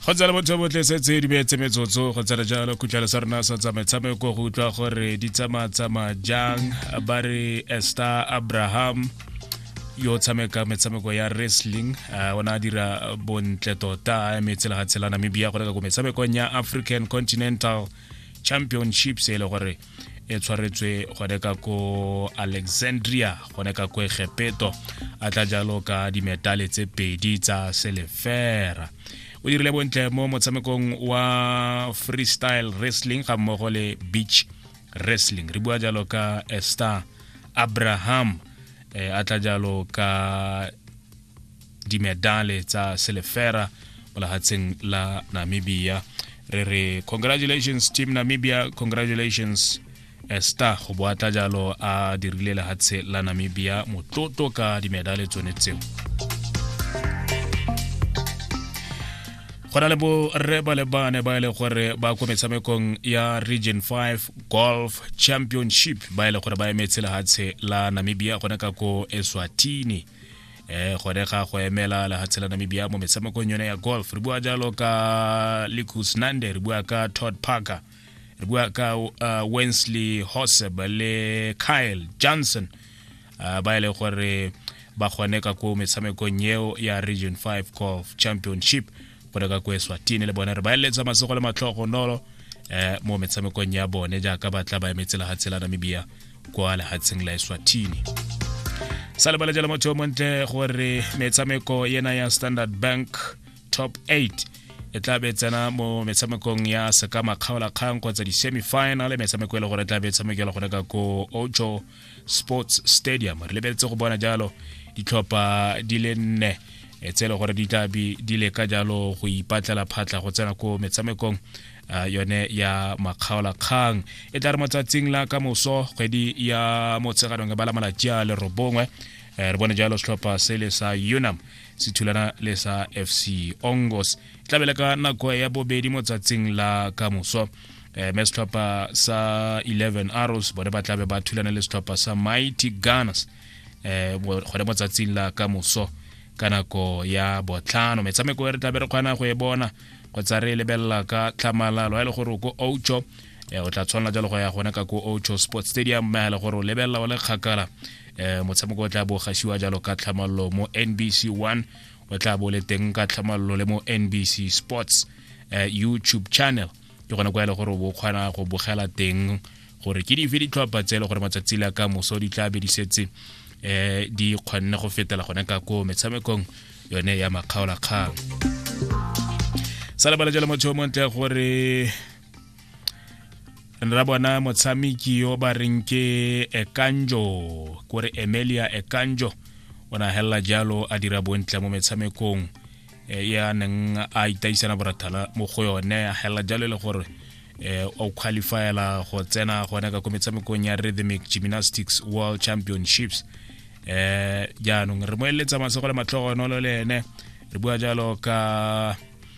go tsala botho botle se tse di beetse metsotso go tsala jalo khutlhelo sa rona sa tsa metshameko go utlwa gore di tsamaa-tsamaya jang ba re ester abraham yo o tshameka metshameko ya wrestling uh, o ne a dira bontle tota eme tsela ga tshela namibia go leka ko metshamekong ya african continental championships e le gore e tshwaretswe gone ka ko alexandria gone ka ko egepeto a tla jalo ka dimetale tse pedi tsa selefera o dirile bontle mo motshamekong wa freestyle wrestling ga mmogo le beach wrestling re bua jalo ka ester abraham eh, a tla jalo ka dimedale tsa selefera mo lehatsheng la namibia re re congratulations team namibia congratulations esta go boatla jalo a dirile lehatshe la namibia motlotlo ka dimedale tsone tseo go na le borre ba le bane ba e le gore ba ko metshamekong ya region 5 golf championship ba e le gore ba emetse lehatshe la namibia gone ka ko eswatini eh gone ga go emela lehatshe la namibia mo metshamekong yone ya golf re bua jalo ka licus nande re bua ka todd parker re bua ka uh, wensley hoseb le kyle johnson uh, ba e le gore ba kgone ka ko metshamekong eo ya region 5 golf championship go leka ko eswatini le bone re ba eletsa matsogo le matlhogo nolo eh mo metshamekong ya bone jaaka ba tla ba emetse lehatshe la namibia kwa lehatsheng la eswatini sa lebala jalo motho yo montle gore metshameko yena ya standard bank top 8 e tla be tsena mo metshamekong ya sekama kgaola kgang kgotsa di-semifinal metshameko e le gore e tla be e tshamekela go reka ko ojo sports stadium re lebeletse go bona jalo ditlhopha di le nne e tse e le gore di tla be di leka jalo go ipatlela phatla go tsena ko metshamekong uh, yone ya makgaolakgang e tla re motsatsing la ka moso kgwedi ya motsheganong e bala malatsi a lerobongwe eh, re bone jalo setlhopha se le sa unam se thulana le sa fc ongos e tlabele ka nako ya bobedi motsatsing la ka moso eh, me setlhopha sa 11 arrows bone ba tlabe ba thulana le setlhopha sa mighty gunners eh, gone mo tsatsing la ka moso ka nako ya botlhano metshameko e re tlabe re kgona go e bona kgotsa re e lebelela ka tlhamalalo a e le gore ko ocho eh, o tla tshwanela jalo go ya gone ka ko ocho sports stadium mme a le gore o lebelela o le kgakala um motshameko o tla bo gasiwa jalo ka tlhamalalo mo nbc one o tla bo le teng ka tlhamalolo le mo nbc sports uh, youtube channel ke gone kwa e le gore o kgona go bogela teng gore ke dife ditlhopha tse e le gore matsatsi la ka moso di tla be di setse um di kgonne go fetela gone ka ko metshamekong yone ya makgaolakgang sa lebala jalo motho o montle gore re ra bona motshameki yo ba reng ke ekanjo kore emelia ekanjo o na helela jalo a dira bontle mo metshamekong e, ya neng a itaisana borathala mo go yone a helela jalo e le gore eh, o qualifyela go tsena gone ka ko metshamekong ya rhythmic gymnastics world championships eh jaanong re mo eletsa masego le matlhogonolo le ene re bua jalo ka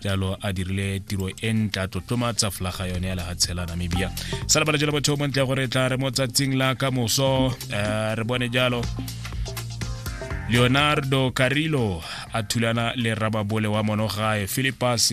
jalo a dirile tiro e ntle a tlotlomatsa flaga yone ya lefatshe la namibia sa lebala jalo batho mo ntle ya gore tla re mo tsatsing la ka moso eh, re bone jalo leonardo carillo a thulana le rababole wa monogae philipus